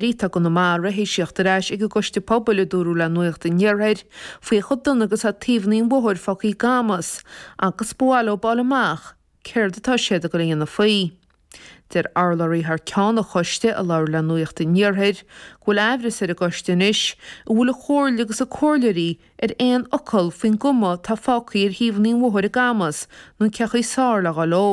Ritheadh an MA Raitheasiocht ar ais ag an gCoiste Pobail, a dúradh le Nuacht an Iarthair, faoi chomh dona agus atá taobhanna an bhóthair fágtha i gCamus, agus ba mhaith leo fáil amach céard atá siad ag a dhéanamh faoi. Deir urlabhraí thar ceann an Choiste, a labhair le Nuacht an Iarthair, go bhfuil aimhreas ar an gCoiste anois, an bhfuil an Chomhairle agus a comhairleoirí ar aon fhocal faoin gcuma atá fágtha ar thaobhanna an bhóthair i gCamus, nó cén chaoi is fearr le dhul leo.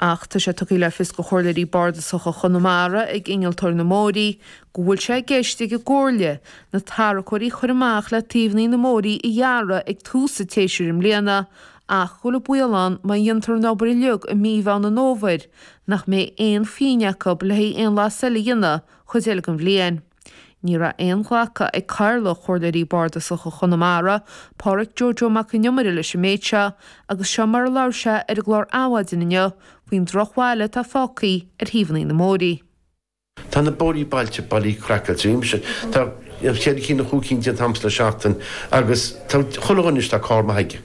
Ach tá sé tugtha le fios do Chomhairleoirí Bardasacha Chonamara ag Innealtóir na mBóithrí go bhfuil sé i gceist ag an gComhairle na tarracóirí a chur amach le taobhanna na mbóithrí a ghearradh ag tús an tséasúir i mbliana ach go bhfuil an baol ann má dhéantar an obair uilig i mí Mheán an Fhómhair nach mbeidh aon phingin acu le haghaidh aon bhlas eile a dhéanamh an chuid eile den bhliain. Ní raibh aon ghlacadh ag Cathaoirleach Comhairleoirí Bardasacha Chonamara, Pádraic Joe Joe Mac an Iomaire leis an méid seo agus seo mar a labhair sé ar an gclár Adhmhaidin inniu faoin drochbhail atá fágthaí ar thaobhanna na mbóithrí. Tá na bóithrí bailte bailithe craiceáilte ar aon nós. Tá ceithre cinn nó chúig cinn déanta agamsa le seachtain agus tá chuile dhuine anois, tá carr maith aige.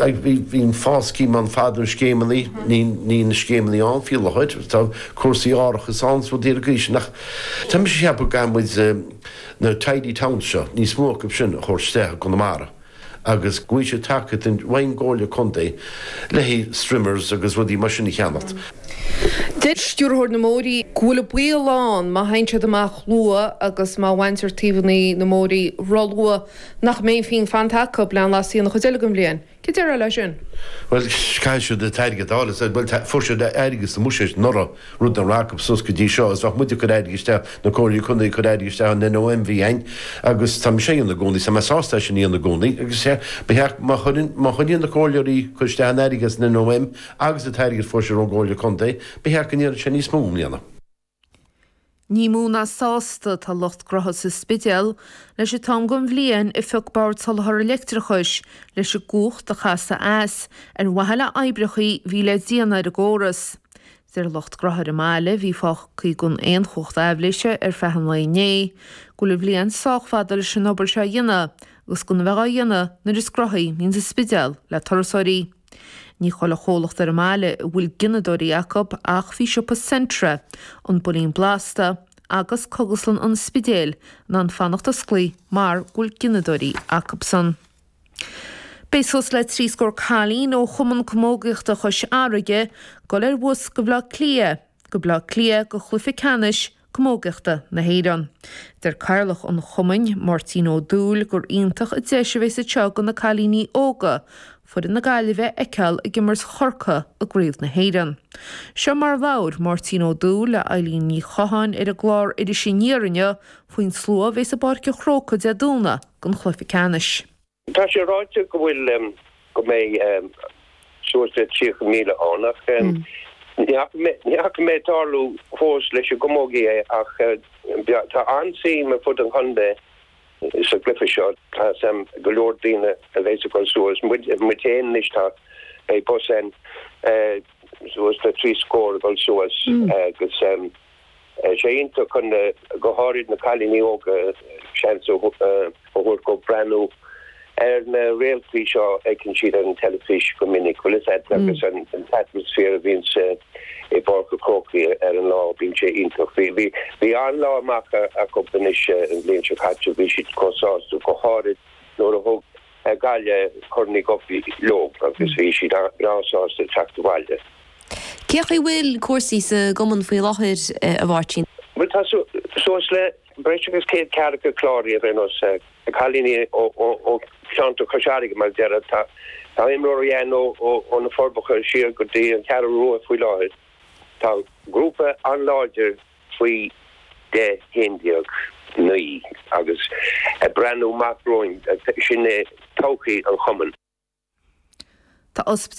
Bhíodh FÁS scheme ann fadó, na scéimeanna, níl na scéimeanna ann faoi láthair, tá cúrsaí árachais ann is rudaí ar an gcaoi sin ach tá mise ag ceapadh go gcaithfidh muid na tidy towns seo, níos mó acu sin, a thabhairt isteach i gConamara agus go bhfaighidh siad tacaíocht ón gComhairle Contae le haghaidh strimmers agus rudaí mar sin a cheannacht. Deir Stiúrthóir na mBóithrí go bhfuil an baol ann má théann siad amach luath agus má bhaintear taobhanna na mbóithrí róluath, Nach mbeidh pingin fanta acu le aon bhlas a dhéanamh an chuid eile den bhliain? Céard a déarfá leis sin? Bhuel, caithfidh siad an t-airgead a fháil, is dóigh. Bhuel, fuair siad airgead sa mbuiséad anuraidh, rud nach raibh acu suas go dtí seo. Is bhíodh muid ag cur airgid isteach, na comhairleoirí contae ag cur airgid isteach an NOM muid fhéin, agus tá mise á dhéanamh i gcónaí, tá mé sásta é sin a dhéanamh i gcónaí, agus má choinníonn na comhairleoirí ag cur isteach an airgid as an NOM agus an t-airgead a fuair siad ón gcomhairle contae, b'fhéidir go ndéanfadh sé níos mó i mbliana. Ní mó ná sásta atá lucht gnótha sa Spidéal leis an t-am den bhliain a phioc Bord Soláthair an Leictreachais leis an gcumhacht a chasadh as, ar mhaithe le oibreacha a bhí le déanamh ar an gcóras. Deir lucht gnótha ar an mbaile, a bhí fágtha gan aon chumhacht aibhléise ar feadh an lae inné, go bhfuil an bhliain sách fada leis an obair seo a dhéanamh, agus gan a bheith á dhéanamh nuair is gnóthaí a bhíonns an Spidéal le turasóirí. Ní chuile chomhlacht ar an mbaile a bhfuil gineadóirí acu ach bhí siopa Centra, An Builín Blasta agus Cogaslann an Spidéil in ann fanacht osclaí mar go bhfuil gineadóirí acusan. Beidh suas le trí scór cailín ó Chumann Camógaíochta Chois Fharraige ag dul ar bhus go Baile Átha Cliath, go Baile Átha Cliath go cluiche ceannais camógaíochta na hÉireann. Deir Cathaoirleach an Chumainn, Máirtín Ó Dúill, gur iontach an deis a bheas anseo do na cailíní óga foireann na Gaillimhe a fheiceáil ag imirt Chorcaí i gCraobh na hÉireann. Seo mar labhair Máirtín Ó Dúill le Eibhlín Ní Chatháin ar an gclár Iris Aniar inniu faoin slua a bheas i bPáirc an Chrócaigh Dé Domhnaigh don chluiche ceannais. Tá sé ráite go bhfuil, go mbeidh suas le 30,000 ann ach ní fhaca mé ag tarlú fós leis an gcamógaí é ach tá an-suim ar fud an chontae sa gcluiche seo. Tá go leor daoine a bheas ag dul suas, muid fhéin anois tá, beidh bus ann suas le trí scór ag dul suas agus Tá sé iontach do na go háirid na cailíní óga seans a thabhairt dóibh breathnú ar na réaltaí seo a fheiceann siad ar an teilifís go minic. Bhuel sin é agus an t-atmaisféar a bhíonn sa i bPáirc an Chrócaigh ar an lá bíonn sé iontach. Bhí bhí bhí an-lá amach acub anois an bhliain seo caite bhí siad chomh sásta go háirid nuair a thug an Ghaillimh Corn Uí Dhubhthaigh leo agus bhí siad breá sásta teacht abhaile. Cé chaoi bhfuil cúrsaí sa gcumann faoi láthair, a Mháirtín? Bhuel, tá suas le breis agus céad ceathracha cláraithe anois, cailíní ó cheantar Chois Fharraige, mar a déarfá. Tá imreoirí ann ó na Forbacha siar go dtí an Cheathrú Rua faoi láthair. Tá grúpa an-láidir faoi deich, faoi haon déag againn agus ag breathnú amach romhainn, sin é todhchaí an Chumainn. Tá Ospidéal